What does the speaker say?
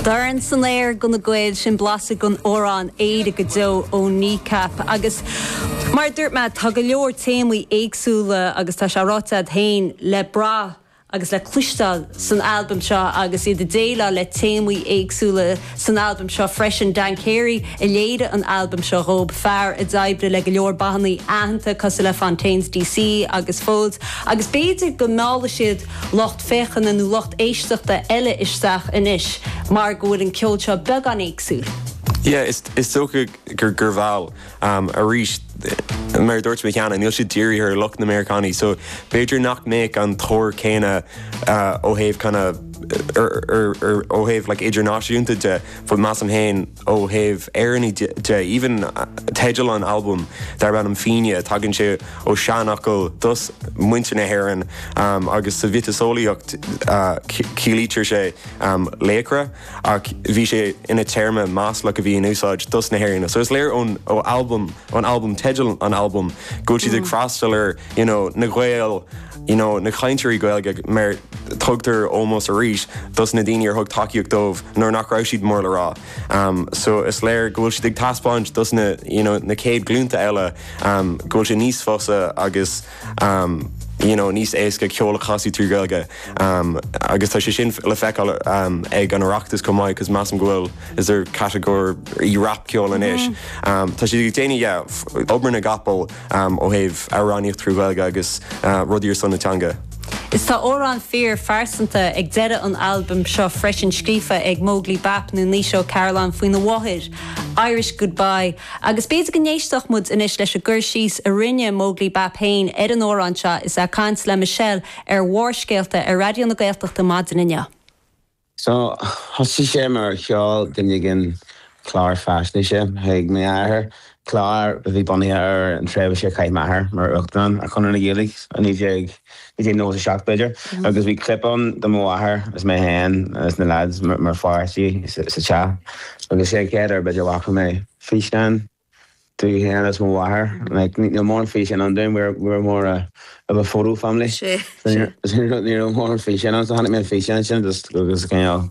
Dorn san aer do na Gaeil, sin blaiseadh den amhrán 'Éire go Deo' ó Kneecap agus mar a dúirt mé tá go leor téamaí éagsúla agus tá sé ráite agat féin, le brath agus le cloisteáil san albam seo agus iad ag déileáil le téamaí éagsúla. san albam seo freisin. Dan Carey a léirigh an albam seo dhóibh, fear a d'oibrigh le go leor bannaí aitheanta cosúil le Fontaines DC agus Foals agus b'fhéidir go meallfaidh siad lucht féachana nó lucht éisteachta eile isteach anois mar go bhfuil an ceol seo beagán éagsúil. Yeah, is dócha gur mheall. um arís. Mar a dúirt mé cheana, níl siad dírithe ar lucht na Meiriceánaigh, so b'fhéidir nach mbeadh an tóir céanna ó thaobh kind of ó thaobh like idirnáisiúnta de, but measaim féin ó thaobh Éireannaigh de, even teideal an albaim darb ainm Fenian, tagann sé ó seanfhocal dos muintir na hÉireann agus sa mhiotaseolaíocht ciallaítear sé laochra. ach bhí sé ina téarma maslach a bhí in úsáid dos na hÉireannaigh. So is léir ón albam, ón albam, teideal an albaim, go bhfuil siad ag freastal ar you know, na Gaeil, you know, na chainteoirí Gaeilge mar tugtar ómós arís dos na daoine ar thug tacaíocht dóibh nuair nach raibh siad mór le rá. Um, so is léir go bhfuil siad ag taispeáint dos na, you know, na céad glúnta eile um, go bhfuil sé níos fusa agus you know, níos éasca ceol a chasadh trí Ghaeilge um agus tá sé sin le feiceáil um ag an Oireachtas chomh maith cos measaim go bhfuil is there a catagóir i rap ceol anois um tá siad ag déanamh yeah obair na gcapall um ó thaobh amhránaíocht trí Ghaeilge agus uh rudaí ar son na teanga. Is tá amhrán fíor phearsanta ag deireadh an albaim seo freisin scríofa ag Móglaí Bap nó Naoise Ó Cairealláin faoina mháthair, Irish Goodbye, Agus b'fhéidir go n-éistfeadh muid anois leis an gcur síos a rinne Móglaí Bap féin ar an amhrán seo is é ag caint le Michelle ar Bharrscéalta ar Raidió na Gaeltachta maidin inniu. So, thosaigh sé mar sheol duine éigin clár faisnéise chuig m'athair, clár a bhí bunaithe ar an tréimhse a chaith m'athair mar Uachtarán ar Chonradh na Gaeilge i 19. 97 b'fhéidir, agus bhí clip ann de mo mháthair agus mé féin agus na leaids mar pháistí sa teach agus sé an chéad uair b'fhéidir a bhfaca mé físeán de mé féin agus mo mháthair, like níl mórán físeán ann dúinn, we were more of a photo family, so ní raibh mórán físeán ann, so chonaic mé an físeán sin agus cineál.